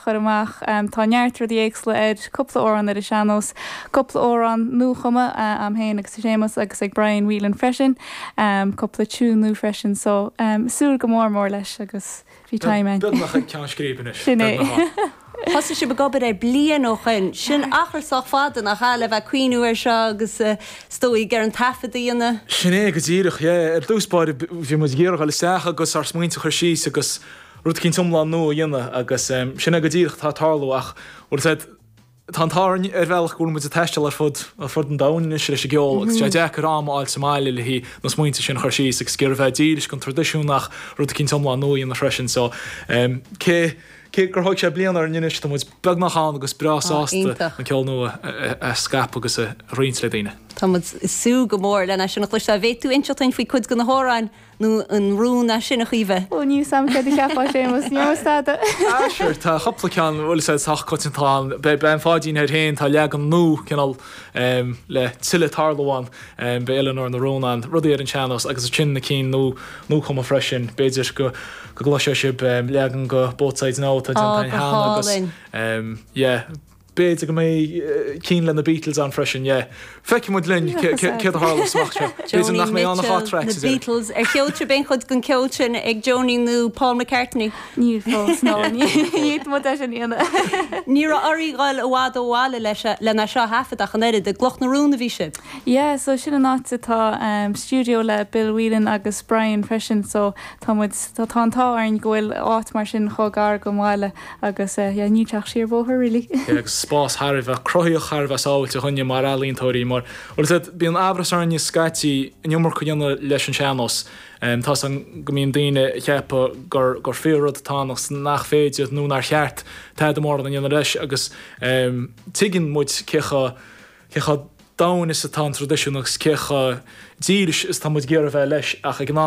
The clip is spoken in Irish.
chur amach. Tá neart rudaí éagsúla air, cúpla amhrán ar an sean-nós, cúpla amhrán nuachumtha a'am féin agus ag Séamus agus ag Brian Whelan freisin, cúpla tiúin nua freisin. So, ag súil go mór mór leis agus bhí time ann. Beagnach ag ceann scríbe anois. Sin é. Thosaigh sibh ag obair air bliain ó shoin. Sin achar sách fada, nach ea, le bheith ag cuimhniú air seo agus, is dóigh, ar an taifead a dhéanamh? Sin é, go díreach, yeah. Ar dtús báire, bhí muid ag iarraidh dul isteach agus ár smaointe a chur síos agus Rud cinnte iomlán nua a dhéanamh agus sin é go díreach atá ag tarlú ach, as I said, tá an t-ádh ar bhealach go bhfuil muid ag taisteal ar fud ar fud an domhain anois leis an gceol agus tá sé deacair am a fháil sa mbaile le haghaidh na smaointe sin a chur síos agus gar a bheith dílis don traidisiún ach rud cinnte iomlán nua a dhéanamh freisin so cé cé gur thóig sé bliain orainn anois tá muid beagnach ann agus breá sásta an ceol nua a scaipeadh agus a roinnt le daoine. Tá muid ag súil go mór lena chloisteáil. An bhféadfá inseacht dúinn faoi cuid de na hamhráin? nó an rún é sin a Chaoimhe? Ó níl 'fhios a'm céard a cheapfadh Séamus, níor mhiste fhada. Ah sure, tá cupla ceann, bhuel is é sách coitianta, tá an, beidh Bean Pháidín air fhéin, tá leagan nua, cineál ehm, le tuilleadh ag tarlú ann, ehm, beidh Eileanóir na Rún ann, rudaí ar an tsean-nós agus ansin na cinn nua, nuachumtha freisin, b'fhéidir go, go gcloisfeadh sibh ehm, leagan de Both Sides Now atá déanta cheana agus ehm, yeah, B'fhéidir go mbeidh cinn le na Beatles ann freisin, yeah. Feicfidh muid linn céard a tharlós amach anseo. B'fhéidir nach mbeidh ann ach dhá thraic sa deireadh. Beatles ar chuala sibh, an bhfuil aon chuid den cheol sin ag Joni nó Paul McCartney. Níl fós, ná níl, tá muid leis an aonach. Ní raibh oraibh a ghoil i bhfad ó bhaile leis seo a thaifeadadh ach an oiread, i gCloch na Rún a bhí sibh. Yeah, so sin an áit a bhfuil stiúideo le Bill Whelan agus Brian freisin, so Tá muid, tá an t-ádh orainn go bhfuil áit mar sin chomh gar do bhaile, agus yeah, níl sé ach siar bóthar really. Yeah, agus spás thar a bheith cruthaitheach, thar a bheith sábháilte dúinne mar ealaíontóirí, mar, mar is eol duit, bíonn amhras orainn scaití an iomarca a dhéanamh leis an sean-nós. Tá a fhios a'm go mbíonn daoine ag ceapadh gur, gur fíor rud atá ann agus nach féidir nó nár cheart tada mór a dhéanamh leis agus tuigeann muid cé chomh, cé chomh domhain is atá an traidisiún agus cé chomh dílis is atá muid ag iarraidh a bheith leis ach ag an am,